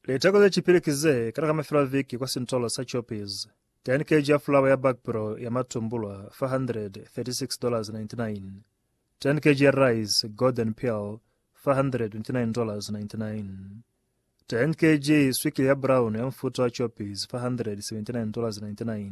Liteko ze cipili ki ze kana ka mafelo a viki kwa sintolo sa Choppies. Teni keji ya fulawa ya bakpro ya matumbulwa $436.99. Teni keji ya rice Golden Pearl $429.99. Teni keji swikili ya brown ya mufuta wa Choppies $479.99.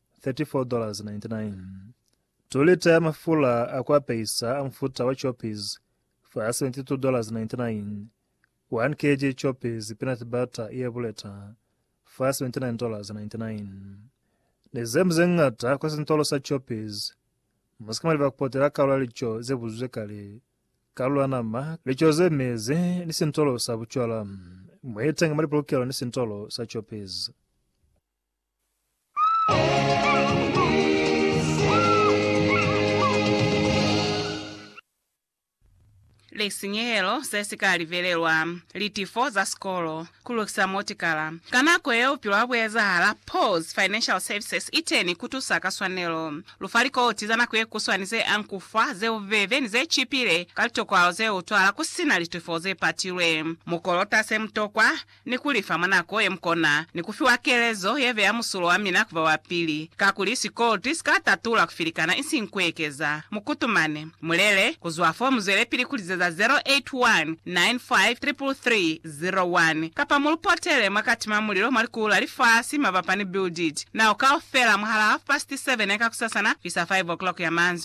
34.99 2 lita ya mafula a ku apeisa a mufuta wa Choppies fa $72.99 1 kg Choppies peanut butter ye buleta fa $79.99 Ni ze mu ze ñata kwa sintolo sa Choppies Mu si ka mwa leba ku potela kalulo ya lico ze buzwizwe kale, kalulo ya nama, lico ze mezi, ni sintolo sa bucwala. Mu iteñi mwa lipolokelo ni sintolo sa Choppies. lisinyehelo se si ka livelelwa, litifo za sikolo, ku lukisa motikala ka nako yeo bupilo ha bu ezahala, pause, financial services iteni ku tusa ka swanelo. Lu fa likoti za nako ye kuswani ze ang ku fa, ze bubebe ni ze cipile ka litokwalo ze utwala ku si na litifo ze patilwe. Mu kolota se mu tokwa ni ku li fa mwa nako ye mu kona, ni ku fiwa kelezo ye beya musulo wa mina ku ba wa pili, kakuli sikolti si ka tatula ku filikana isiñi ku ekeza. Mu kutumane. Mu lele. Ku zwa fo mu zwelepili ku lizeza 0819533301, kapa mu lu potele mwa kati mwa mulilo mwa likulu la lifasi mabapa ni Build It Now kaufela mwahal'a half past seven ya kakusasana fisa five o'clock ya manzwi.